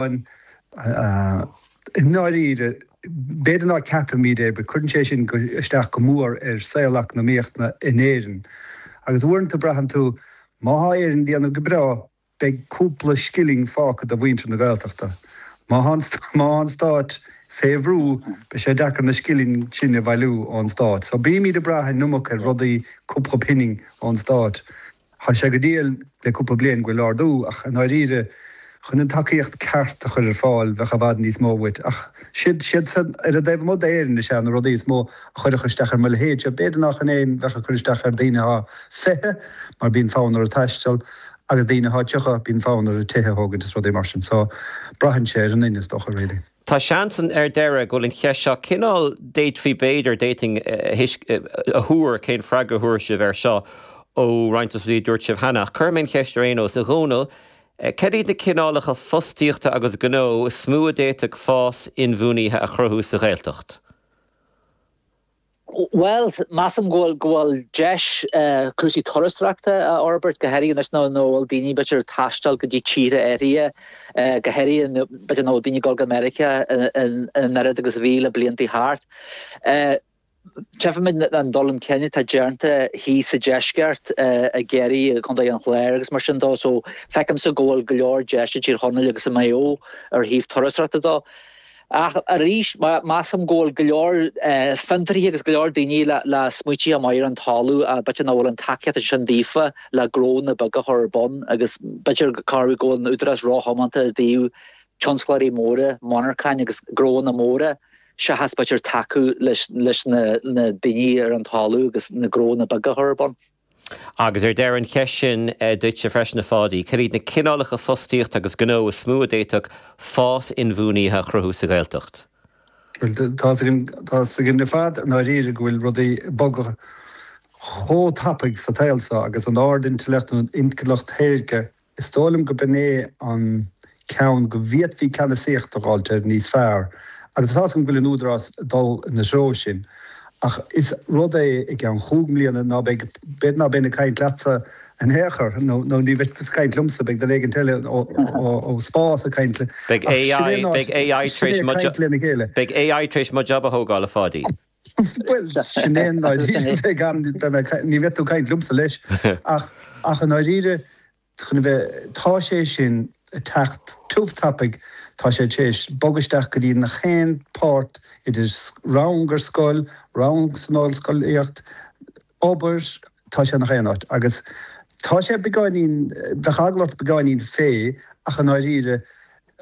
An. I ndáiríre, b'fhéidir nách ceapaimid é, but cuireann sé sin isteach go mór ar saol eacnamaíochta in Éirinn. Agus uaireanta braitheann tú, má thá Éire ag déanamh go breá, beidh cúpla scilling fágtha do mhuintir na Gaeltachta. Má thá má thá an stáit fé bhrú, beidh sé deacair na scilling sin a bhailiú ón stát. So bímid ag brath an iomad ar rudaí cúpla pinning ón stát. Thá sé go diail le cúpla bliain gan aon dabht, ach i ndáiríre, chun an tacaíocht ceart a chur ar fáil, bheadh i bhfad níos mó uait. Ach siad, siadsan ar an dtaobh amuigh d'Éirinn is ea na rudaí is mó a chuirfeadh isteach ar mo leithéid. Sea, b'fhéidir nach in a bheadh ag cur isteach ar daoine atá fiche, mar bíonn fonn orthu taisteal, agus daoine atá tríocha, bíonn fonn orthu tithe a thógaint is rudaí mar sin. So, braitheann sé ar an duine, is dócha, really. Tá seans ann ar deireadh go bhfuil an cheist seo cineál d'fhéadfaí b'fhéidir d'fhéadfainn a thuar cén freagra a thabharfaidh sibh air seo ó roinnt de na rudaí a dúirt sibh cheana, ach cuirfidh mé an cheist ar aon nós. A Dhónaill, céard iad na cineálacha fostaíochta agus gnó is mó a d'fhéadfadh fás inbhuanaithe a chruthú sa Ghaeltacht? Bhuel, measaim go bhfuil deis cúrsaí turasóireachta a fhorbairt go háirithe anois nach bhfuil daoine b'fhéidir ag taisteal go dtí tíortha áirithe go háirithe b'fhéidir nach bhfuil daoine ag dul go Meiriceá an oiread agus a bhí le blianta thart. Tchífimid an dul chun cinn atá déanta thíos sa deisceart i gCiarraí i gContae an Chláir agus mar sin de so feicimse go bhfuil go leor deis i dTír Chonaill agus i Maigh Eo ar thaobh turasóireachta de. Ach arís, measaim go bhfuil go leor fiontraithe agus go leor daoine le smaointí maithe ar an talamh a b'fhéidir nach bhfuil an tacaíocht ansin daofa le gnónna beaga a chur ar bun agus b'fhéidir go go bhfuil an Údarás ró-thiomanta i dtaobh tionsclóirí móra, monarchain agus gnónna móra seachas b'fhéidir tacú leis na daoine ar an talamh agus na gnónna beaga a chur ar bun. Agus ar deireadh an cheist sin duitse freisin, a Pháidí, céard iad na cineálacha fostaíochta agus gnó is mó a d'fhéadfadh fás inbhuanaithe a chruthú sa Ghaeltacht? Bhuel, tá's againn ar fad, i ndáiríre, go bhfuil rudaí ag bogadh chomh tapaidh sa tsaol seo agus an ard-intleacht, an intleacht shaorga, Is dóigh liom gurb in é an ceann go bhféadfaí ceannasaíocht a ghabháil de níos fearr, agus tá's agam go bhfuil an Údarás ag dul ina threo sin. Ach is rud é i gceann chúig mbliana ná beidh, b'fhéidir ná beidh mé ag caint leatsa in aon chor, nó nó ní bheidh tusa ag caint liomsa, beidh duine éigin eile ó spás ag caint le, Beidh ach sin é an AI, AI a bheidh sin é ag caint lena chéile. beidh AI tar éis mo job a thógáil, a Pháidí. Bhuel, sin é i ndáiríre, ní bheidh tú ag caint liomsa leis, ach i ndáiríre, chun a bheith, tá sé sin ag teacht tiubh tapaidh, tá sé tar éis bogadh isteach go dtí nach aon páirt idir rang ar scoil, rang san ollscolaíocht, obair, tá sé nach aon áit agus tá sé beagáinín, bheadh eagla ort beagáinín fé ach i ndáiríre,